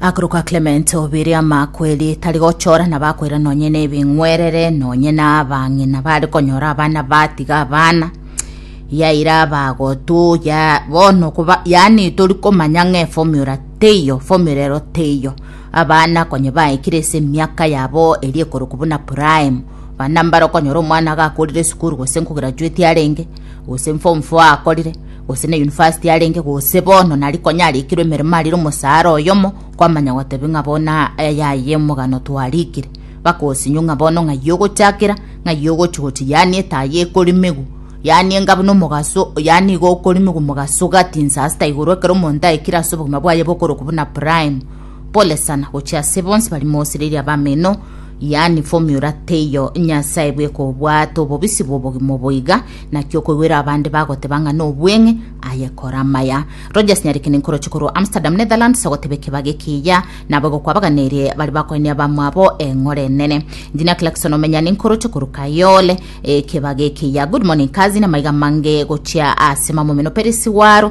Akorokwa Clement obeire amakweri tari gochora nabakoira nonye nebeng'werere nonye nabang'ina bare konyora abana batiga abana yaira abagotu ya bono koba yani tori komanya ng'e formula teiyo formula ero teiyo abana konye baikire ase emiaka yabo eri ekorokwa buna prime bana mbare okonyora omwana gakorire esukuru gose nkograduati arenge gose n'form four akorire, gose ne university arenge gose bono nari konya arikirwe emeremo arire omosara oyomo, kwamanya gotebia ng'a bono aya aye omogano twarikire. Bagosinyo ng'a bono ng'ai ogochakera, ng'ai ogochi gochi yaani etaa ye ekorimigu, yaani enga buna omogaso yaani igo okorimigu mogaso gati insasita igoro ekero omonto aikire ase obogima bwaye bokoroku buna prime. Pole sana gochia ase bonsi bari mosereria abameno. Yaani formula teiyo Nyasae bw'ekobwata obobisi bw'obogima oboiga, naki okoigwera abande bagoteba ng'a nobweng'e aye kora amaya. Rogers Nyarikeni nkoroche korwa Amsterdam, Netherlands, agoteba ekebago ekiya nabo egokwabaganirie baria bakoenia abamwabo eng'ora enene. Engineer Clarkson Omenyani nkoroche korwa Kayole, ekebago ekiya. Good morning cousin, amaiga amange gochia ase mamomeno Peris waro,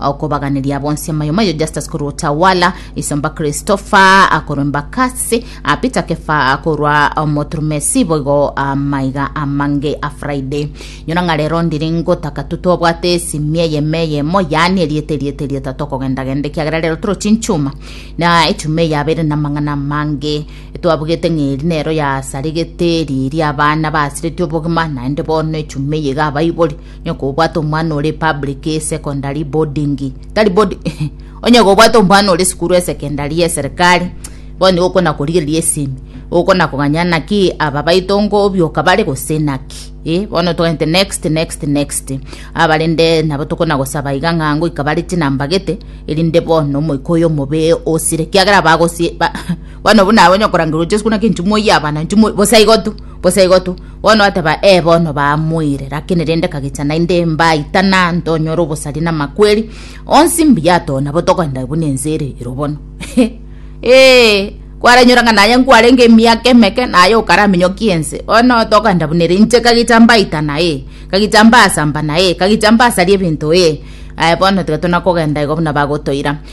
Okobaganeria bonsi amayo mayo Justus korwa Utawala, Isomba Christopher akorwa Embakasi, a Peter Kefa akorwa Omoturumesi boigo amaiga amange a Friday. Nyora ng'a rero ndiri ngotaka tu tobwate esimi eyemo eyemo yaani erieta erieta erieta tokogendagenda ekiagera rero toro chinchuma na echuma eyabeire na amang'ana amange twabugete ng'a eri nero yasaregete riria abana basiretie obogima naende bono echuma eye iga abaibori Onye kobwate omwana ore public secondary boarding tari boarding onye kobwate omwana ore sukuru esekendari ya serikali bono nigo okona korigereria esimi okona koganya naki aba baito ngo obioka bare gose naki eh bono togente next next next abarende nabo tokona gosaba iga ng'a ngoika bare chinambagete erinde bono omoika oyo omobe osire kiagera bagosie ba, bono buna abonye okorangerwa gochia sukuru naki nchimoyie abana nchimo bosa igo tu Gose igo tu, bono ateba, Ee, bono baamoire, lakini rende kagecha naende mbaitana, ntonyore obosari na amakweri, onsi mbuya to, nabo togoenda buna ense ere ero bono. Ee, kwaranyora ng'a naye nkwarenge emiaka emeke, naye okaraminyokia ense, bono togoenda buna ere, inche kagecha mbaitana, ee, kagecha mbaasambana, ee, kagecha mbasaria ebinto, ee, aye bono tiga tuna kogenda igo buna bagotoira.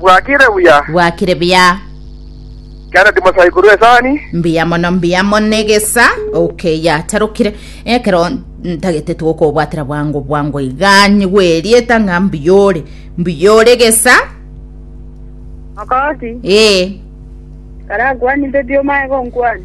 Bwakire buya. Bwakire buya. Kera ndimo sai korwa esani. Mbuya mono mbuya mono egesa okay yatarukire ekero ntagete tugokobwatera bwango bwango iga nyigwerieta ng'a mbuyore mbuyore egesa Makoti. ee Kara kwani mbe bio mae go nkwani.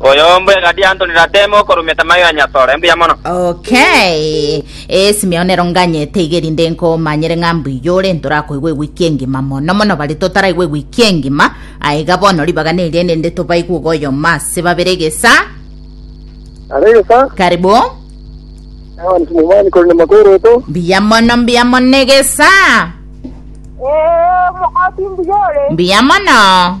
Oyomo e Gadiantoni Ratemo okorumia Tamayo ya Nyasore. Mbuya mono. Okay. Eh, Simeon nero nganyete iga erinde nkomanyere ng'a mbuya ore ntorakoigwe ewiki engima mono mono bare totaraigwe ewiki engima aiga bono ribaga neria erinde tobaigwe iga oyomo ase babere gesa Are gesa, karibu ewan simumani kori na makoroto. mbuya mono mbuya mono egesa Ee, omokoti mbuyore. mbuya mono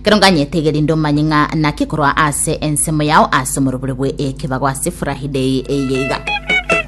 Ekero nganyetege rinde omanye ng'a naki korwa ase ensemo yao ase omorobore bwe ekebago ase furahi day eye iga.